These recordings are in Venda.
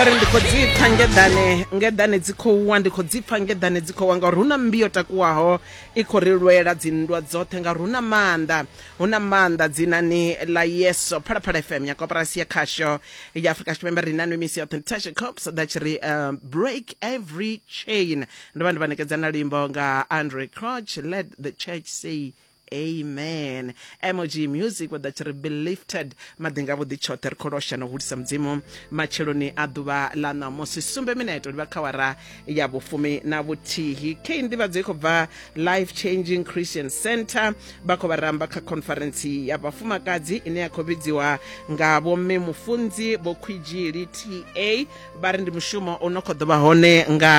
uri ndi khou dzi pfa ngeḓane ngeḓane dzi khou wa ndi khou dzi pfa ngeḓane dzi khou wa ngauri hu na mmbi yo takuwaho i khou ri lwela dzinndwa dzoṱhe ngauri hu na maanḓa hu na maanḓa dzinani ḽa yeso phalaphala fm ya koporasi ya khasho ya afrika tshipembe ri nanu misi yoṱhe tashe cops ḓa tshi ri uh, break every chain ndo vha ndi vha ṋekedza na luimbo nga andre croch let the church say amen mog music vha ḓa tshi ri be lifted maḓi nga vhuḓi tshoṱhe ri khou losha na u hulisa mudzimu matsheloni a ḓuvha ḽa ṋamusi sumbe mineto livha kha wara ya vhufumi na vhuthihi kei nḓivhadzo i khou bva life changing christian center vha khou vha ramba kha conference ya vhafumakadzi ine ya khou vhidziwa nga vhomme mufunzi vho khwidzhili ta vha ri ndi mushumo u no khou ḓovha hone nga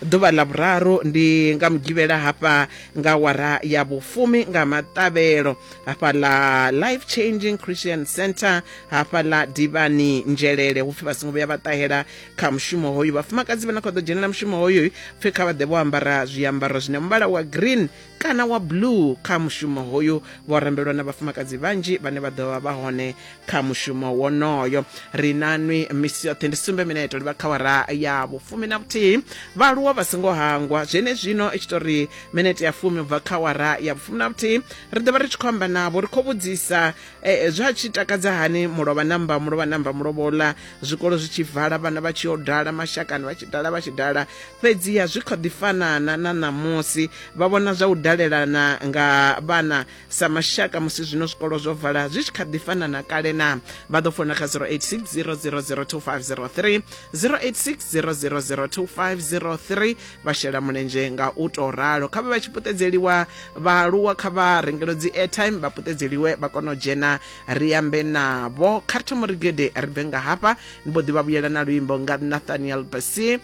ḓuvha ḽa vhuraru ndi nga mugivhela hafha nga wara ya vhufumi nga maṱavhelo hafha ḽa life changing christian center hafha ḽa divani nzhelele hupfi vha songo vhuya vha ṱahela kha mushumo hoyu vhafumakadzi vha na khou ḓo dzhenela mushumo hoyu pfhi kha vha ḓe vho ambara zwiambaro zwine muvhala wa green kana wa blue kha mushumo hoyu vho rambelwa na vhafumakadzi vhanzhi vhane vha ḓovha vha hone kha mushumo wonoyo ri na nwi misi yoṱhe ndi sumbe mineto livha kha wara ya vhufumi na vhuthihi vhaaluwa vha songo hangwa zwenezwino i tshi to ri minete ya fumi ubva kha wara ya vhufumi na vhuthihi ri ḓovha ri tshi khou amba navho ri khou vhudzisa eh, zwa tshi takadza hani mulovha namba mulovha namba mulovhola zwikolo zwi tshi vala vhana vha tshi yo dala mashakani vha tshi dala vha tshi dala fhedziha zwi kha ḓi fanana na ṋamusi vha vhona zwa u dalelana nga vhana sa mashaka musi zwino zwikolo zwo vala zwi tshi kha ḓi fanana kale na vha ḓo fona kha 086 0002503 086 0002503 vha shela mulenzhe nga u tou ralo kha vha vha tshi puṱedzeliwa vhaaluwa kha vha rengelo dzi airtime vha puṱedzeliwe vha kona u dzhena ri ambe navho kha ri thoma ri gede ri bve nga hafha ni mbo ḓi vha vhuyela na luimbo nga nathaniel basi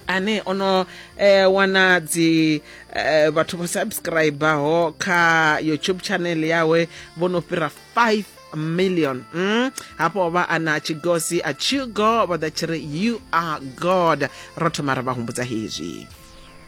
ane ono eh, wana dzi eh, vhathu vho subscribaho kha youtube channel yawe vho no fhira 5 million mm? hafho vha ana tshigosi a tshigo vha ḓa tshi ri you are god ro thoma ra vha humbudza hezwi